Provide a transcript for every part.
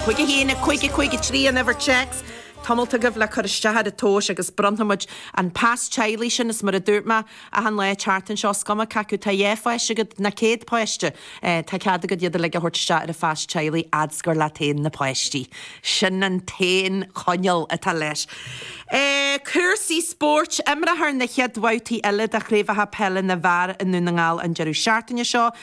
Chuige féin, Chuige, Chuige trí an uimhir téacs. Tamalt agaibh le cur isteach ar an tomhas agus bronnfaimid an pas teaghlaigh sin, is mar a dúirt mé achan lá an tseachtain seo, is cuma cé acu tá dhá pháiste agat ná céad páiste, tá cead agat iad uilig a thabhairt isteach ar an phas teaghlaigh fhad's gur leat féin na páistí. Sin an t-aon choinníoll atá leis. Cúrsaí spóirt, Imreofar na chéad bhabhtaí eile de Chraobhacha Peile na bhFear i nDún na nGall an deireadh seachtaine seo.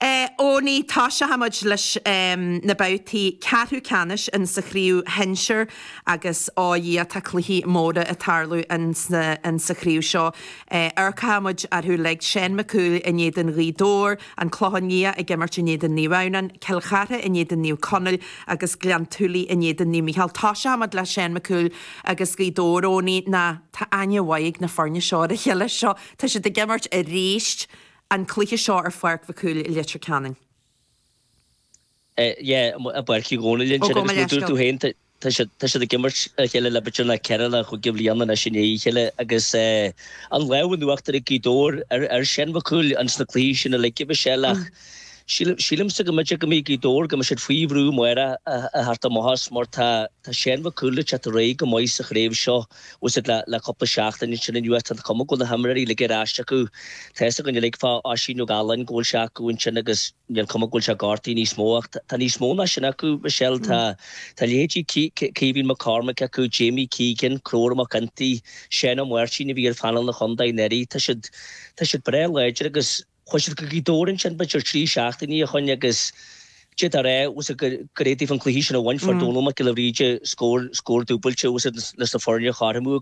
Eoiní, toiseochaimid leis na babhtaí ceathrú ceannais in sa chraobh shinsir agus ó Dhia tá cluichí móra ag tarlú in sa chraobh seo. Amharcfaimid orthu uilig, Seán Mac Cumhaill in éadan Ghaoth Dobhair, An Clochán Liath ag imirt in éadan Naomh Adhamhnáin, Cill Chartha in éadan Naomh Conaill agus Gleann tSúilí in éadan Naomh Mícheál. Toiseochaimid le Seán Mac Cumhaill agus Gaoth Dobhair, Eoiní, ná. Tá aithne mhaith ag na foirne seo ar a chéile. Seo, tá siad ag imirt arís an cluiche seo ar pháirc Mhic Cumhaill i Leitir Ceanainn. Sea, i bpáirc Uí Dhónaill ansin, agus mar a dúirt tú féin, tá siad ag imirt a chéile le b'fhéidir ceithre nó chúig bhliana anois i ndiaidh a chéile, agus an lámh in uachtar ag Gaoth Dobhair ar Sheán Mhic Cumhaill insna cluichí sin uilig, Michelle, ach sílimse go mb'fhéidir go mbeidh Gaoth Dobhair, go mbeidh siad faoi bhrú amárach a theacht amach as, mar tá Seán Mhic Cumhaill ag teacht réidh go maith sa chraobh seo. fhios agat le cúpla seachtain ansin anuas. Tá an chuma go bhfuil na himreoirí uilig ar ais acu. Tá fhios againn uilig fá Oisín Ó Gailín go bhfuil sé acu ansin agus níl cuma go bhfuil sé gortaithe níos mó ach tá níos mó ná sin acu, Michelle. Tá tá leithéidí Caoimhín Mac Cormaic acu, Jamie Keegan, Conchúr Mac Fhionntaigh, Seán Ó Máirtín a bhí ar phainéal an chontae anuraidh. Tá siad tá siad breá láidir agus. Chuaidh siad go Gaoth Dobhair ansin b'fhéidir trí seachtainí ó shoin agus d'fhéadfá a rá fhios agat gur fhéad daofa an cluiche sin a bhaint. Fuair Domhnall Mac Giolla Bhríde scór dúbailte fhios agat leis na foirne a chothromú agus